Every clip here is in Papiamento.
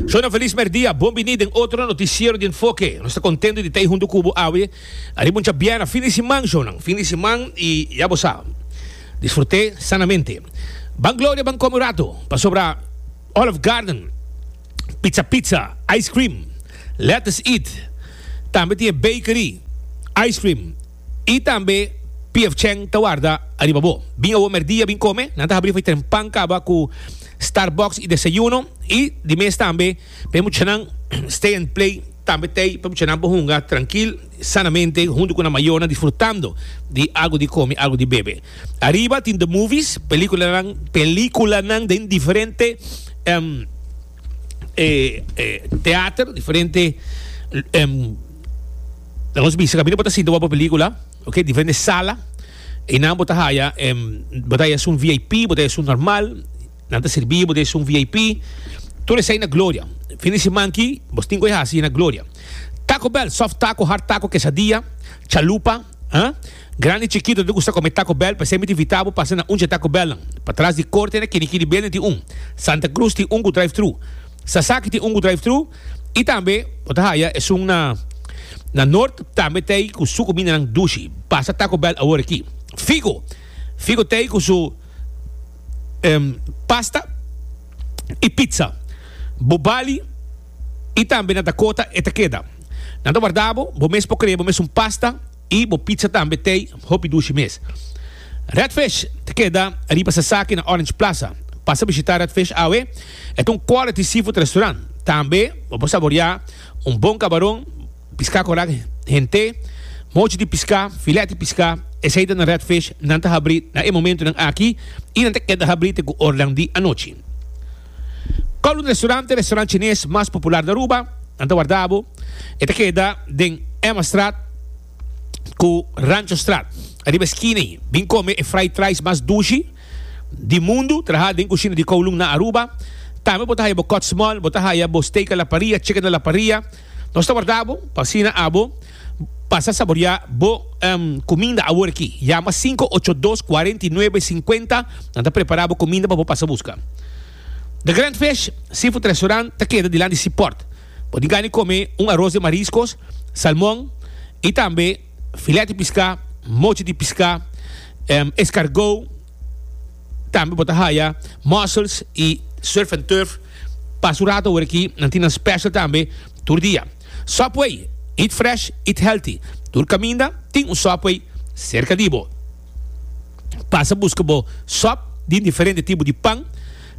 Shona felis merdia, bon bini den otro noticiero di Enfoke. Nos ta contento di ta ei hunto cu bo awe ariba un chabiera fin di siman, shownan, fin di siman y ya bo sa, disfrute sanamente. Ban gloria, ban come un rato, pasobra Olive Garden, pizza pizza, ice cream, lettuce eat, tambe tin e bakery, ice cream, I tambe pfchen ta warda ariba bo. Bin awor merdia bin come, nan ta habri fo'i tren pan caba cu Starbucks y desayuno. Y di mes tambe p'e muchanan stay and play tambe t'ey pa muchanan por hunga trankil y sanamente hunto cu nan mayornan disfrutando di algo di come, algo di bebe. Ariba tin the movies, peliculanan, peliculanan den diferente. eh, eh, teater, diferente em, nos bisa camino bota sinta guapa película, ok, diferente sala, y nan bota haya, em, bota haya un VIP, bota haya un normal, nan te serví, bota haya un VIP, todo esa na gloria. Fin de semana aquí, vos tingo hasi na gloria. Taco Bell, soft taco, hard taco, quesadilla, chalupa, Ha? Grandi chikito di usa come Taco Bell pa sempri di vita bo pasa na un dje Taco Bell nan. Patras di corte na kini kini bende tin un. Santa Cruz tin un cu drive thru. Sasaki tin un cu drive thru y tambe bo ta haya esun na na North tambe tey cu su comida nan dushi. Pasa Taco Bell awor aki. Figo Figo tey cu su em pasta y pizza. Bo bali. I tambe na Dakota e ta keda. Nan ta warda bo, bo mes por krea bo mes un pasta i bo pizza tambe tei hopi dushi mes. Redfish ta keda riba Sasaki na Orange Plaza. Pasa bishita Redfish awe, e ta un quality seafood restaurant. Tambe bo por saborea un bon kabaron, piská korak hent'é, mochi di piská, filèt di piská, esei ta na Redfish. Nan ta habri na e momentu nan aki i nan ta keda habri te ku ornan di anochi. Column Restaurante, restaurant chines mas popular na Aruba, nan ta warda bo. E ta keda den Emmastraat cu Ranchostraat, ariba esquina ayi. Bin come e fried rice mas dushi di mundu, traha den cushina di Kowloon na Aruba. Tambe bo ta haya bo kot's mol, bo ta haya bo steak a la parrilla, chicken a la parrilla. Nos ta warda bo pa asina abo pasa saboriá bo kuminda awor aki. Yama sinku ocho dos kuarenta i nuebe sinkuenta. Nan ta prepará bo kuminda pa bo pasa buska. The Grand Fish Seafood Restaurant ta keda dilanti si pòrt. Bo tin gana di kome un aros den mariskos, salmon i tambe filèt di piská, mochi di piská, eskargou, Tambe bo ta haya mussels y surf and turf. Pas un rato awor aki nan tin nan special tambe tur dia. Subway, eat fresh, eat healthy. Tur caminda tin un Subway cerca di bo. Pasa busca bo sub di diferente tipo di pan,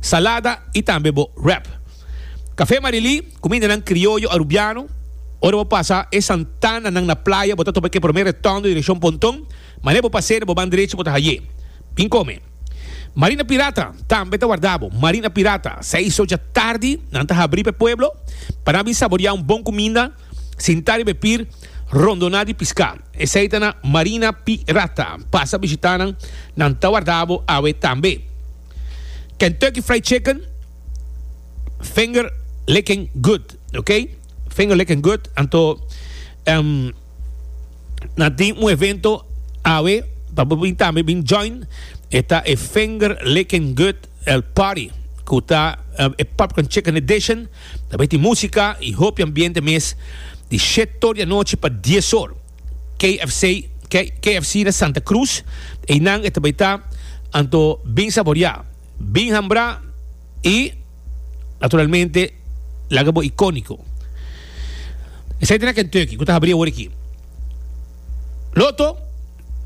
salada y tambe bo wrap. Cafe Marily, cumindanan crioyo Arubiano. Ora bo pasa e Santananan na playa bo ta topa e primer retondo direccion Ponton. Mane bo paser bo ban drechi bo ta haye. Bin come. Marina pirata tambe ta warda bo. Marina pirata seis soja tardi nan ta habri pa e pueblo pa nan bin saboria un bon cuminda, sinta riba e pir, rondona di pisca. Esey ta na Marina pi rata. Pasa bishita nan, nan ta warda bo awe tambe. Kentucky fried chicken finger licking good. Ok. Finger licking good anto em. na tin un evento awe pa bo bin tambe bin join e ta e Vinger Licking Good el Party ku ta e Popcorn Chicken Edition tambe tin musika i hopi ambiente mes di shet tor di anochi pa dies or KFC KFC na Santa Cruz einan e ta bai ta anto bin saboria bin hambra i Naturalmente, laga bo icónico. Esai tin na Kentucky, cu ta habri awor aki. Loto,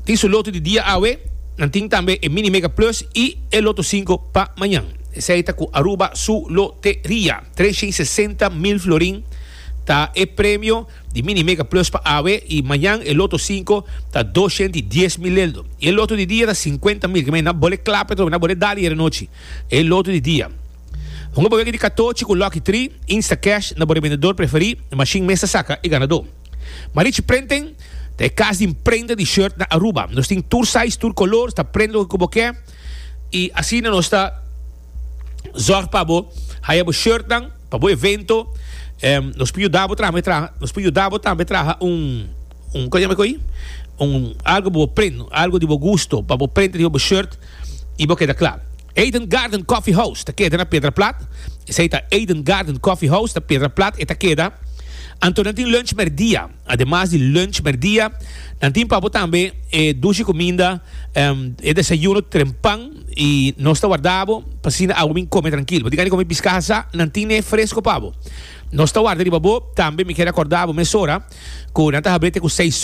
tin su loto di dia awe, nan tin tambe e Mini Mega Plus y e Loto Cinco pa mañan. Esai ta cu Aruba su loteria. Treshei sesenta mil florin ta e premio di Mini Mega Plus pa awe y mañan e Loto Cinco ta doscientodyesmileldo. Y e Loto di dia ta cincuenta mil. Ke men, nan bole clap atrobe, nan bole dal ayer anochi. E loto di dia. Hunga boyaki di katochi ku Lucky Tri, Instacash, na bo rebendedor preferí, mashin mes ta saka e ganadó. Marichi Printing ta e kas di prenta di shirt na Aruba. Nos tin tur size, tur kolor, ta prenta loke ku bo ke i asina nos ta zòrg pa bo haya bo shirtnan pa bo evento. Nos por yuda bo traha, nos por yuda bo tambe traha un. Un cosa me coy un algo bo print algo di bo gusto pa bo print riba bo shirt y bo keda kla Eden Garden Coffee House ta keda na Pedra Plat esey ta Eden Garden Coffee House ta Pedra Plat e ta keda anto nan tin lunch merdia ademas di lunch merdia nan tin pa bo tambe e dushi cuminda e desayuno trempan y nos ta warda bo pa asina abo mi come trankil bo tin gana di come piscasa nan tin e fresco pa bo. Nos ta warda riba bo tambe. Mi kier akorda bo mesora ku nan ta hab'é te ku seis.